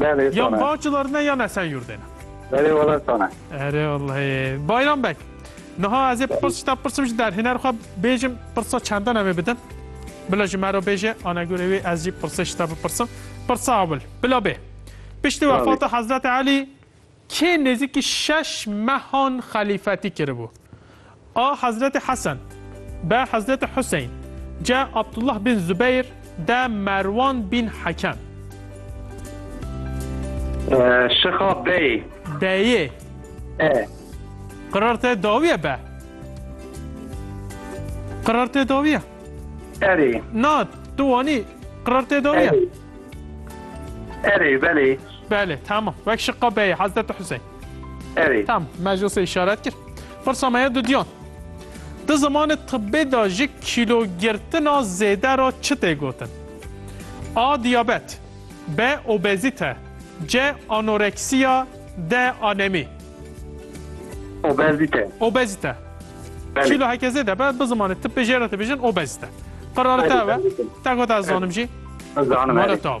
Belê Yan sana. Bağcılar ne yan Esenyurt'e ne. Belê valla sana. Ere vallahi. Bayram Bek. Niha ez ê pirsişta pirsim ji derhêner xwe bêjim pirsa çendan em ê bidim. Bila ji me re bêje ana gurê wê ez jî pirsê ji te bipirsim. Pirsa ewil. Bila bê. Piştî Tabii. wefata Hezreti Elî Kê nêzîkî şeş mehan xelîfetî kiribû. A Hezretê Hesen, be Hezretê Huseyn, ce Abdullah bin Zubeyr, de Merwan bin Hekem. Şixa bey. Beyê. E. Qirar te dawiye be? Qirar te dawiye? Erê. Na, tu wanî qirar te dawiye? Erê, belê. Belê, tamam. Wek şiqa beyê Hezreti Hüseyin. Erê. Tamam, me ji wisa îşaret kir. Pirsa me ye dudiyan. Di zimanê tibbê de ji kîlogirtina zêde re çi tê gotin? A. Diyabet B. Obezîte C. Anoreksiya D. Anemî Obezîte. Obezîte. Belê. Kîlo heke zêde be bi zimanê tibbê jê re dibêjin obezîte. Qirare te Belê, be. belê. Te got ez zanim jî. Zanim Mara erê. te be.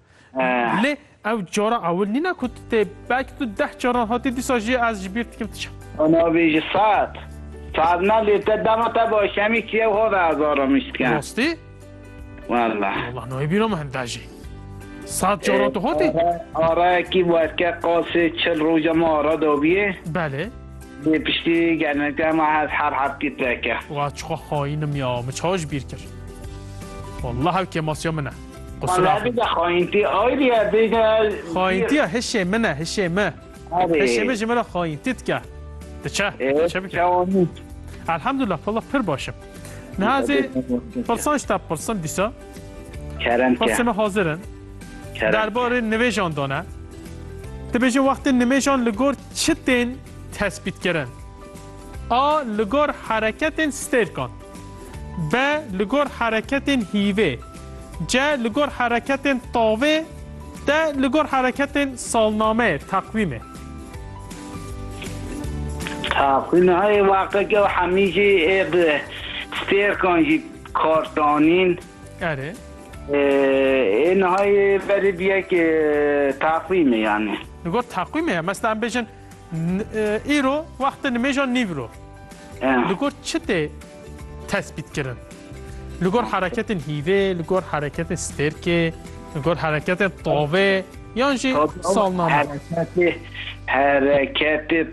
Lê ew cara ewil nîna ku tu tê belkî tu deh caran hatî dîsa jî ez ji bîr dikim tu çi. Ona bî ji sed. Sed ne lê te dema te baş hemî çi ew hove ez aramis dikim. Rastî? Walla. Walla nayê bîra min hemda jî. Sed caran tu hatî? Arayekî werke qasê çil roja me ara dabiyê. Belê. Lê piştî gelmekte me hez her heftî peke. Wa çixa xayînim ya min çawa ji bîr kir. Walla hev kêmasiya min e. Xayîntîya hişê min e hişê me Hişê min ji min re xayîntî dike Diçe Elhamdullah pala pir baş im Niha zê pirsan ji te pirsim dîsa Pirsê min hazir in Derbarê nivêjan de ne Dibêje wextê nimêjan li gor çi tên tespîtkirin A li gor hereketên stêrkan B li gor hereketên hîvê Ce li gor hereketên tavê, de li gor hereketên salnameyê, teqwîmê. Teqwîmê heyê weqekê û hemî jî ê bi stêrkan jî kar danîn. Erê. Ê nihayê berê biyek teqwîmê yanî. Li gor teqwîmê ye. Mesela em bêjin Îro wextê nimêja nîvro li gor çi tê tespîtkirin? Li gor hereketên hîvê, li gor hereketên stêrkê, li gor hereketên tavê yan jî salname. Hereketê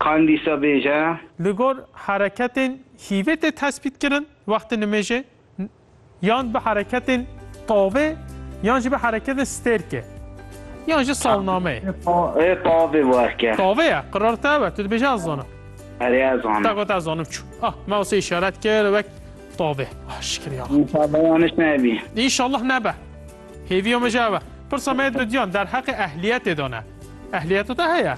qandîsa bêje. Li gor hereketên hîvê tê tespîtkirin wextê nimêjê. Yan bi hereketên tavê yan jî bi hereketên stêrkê yan jî salnameyê. Ê tavê werke. Tavê ye, qirar te be, tu dibêje ez zanim. Erê ez zanim. Te got ez zanim çû. Ah, me wise îşaret kir wek tavê. Ah, şikir ya. Înşallah yaniş nebî. Înşallah nebe. Hêviya me ji ev e. Pirsa me dudiyan derheqê ehliyetê de ne. Ehliyeta te heye?